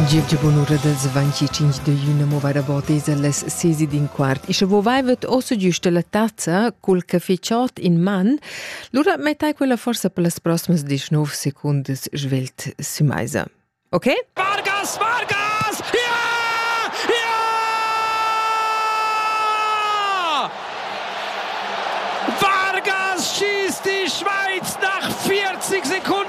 Gievgia bunura dals 25 de iüna mova rabotesa las sesi d'in quart. E sche vo vaivet ossa giusta la tazza cul caffè chod in man, lura mettai quella forsa per las proximas 19 secundas svelt sü meisa. Okay? Vargas, Vargas! Ja! Ja! Vargas schießt die Schweiz nach 40 Sekunden!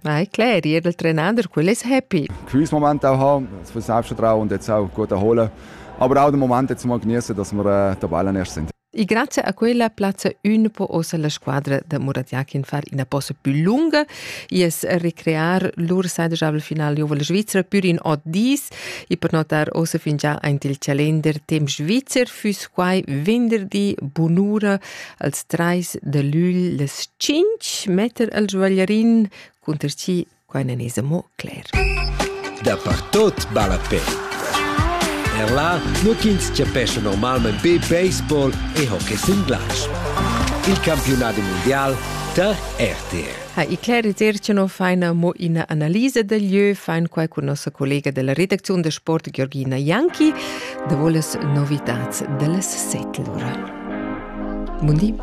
Ma è cler, jeder Trainer, quello è happy. Gewiss Momente auch haben, für Selbstvertrauen und jetzt auch gut erholen. Aber auch den Moment jetzt mal genießen, dass wir äh, der Ballen erst sind. E grazie a quella plazza un po' osa la squadra da Muratjakin far ina posa più lunga e recrear lur seidegabel finale juvel Svizra pur in ot dis e per notar osa fingià aint il calender temp svizzer füss quai venderdi bunura als trais de lügl les tschinch metter al joaglierin cunter chi qua nan es amo cler. Dapertot balla pe. Er là nu ch'ins chapescha normalmain be baseball e hockey sin glatsch. Il campiunat mundial tar RTR. Ha i Clary Zercino faina mo ina analisa del lieu, fain quai cun nossa collega della redacziun de sport Georgina Janki, da voles novitats dellas settlura. Buondì.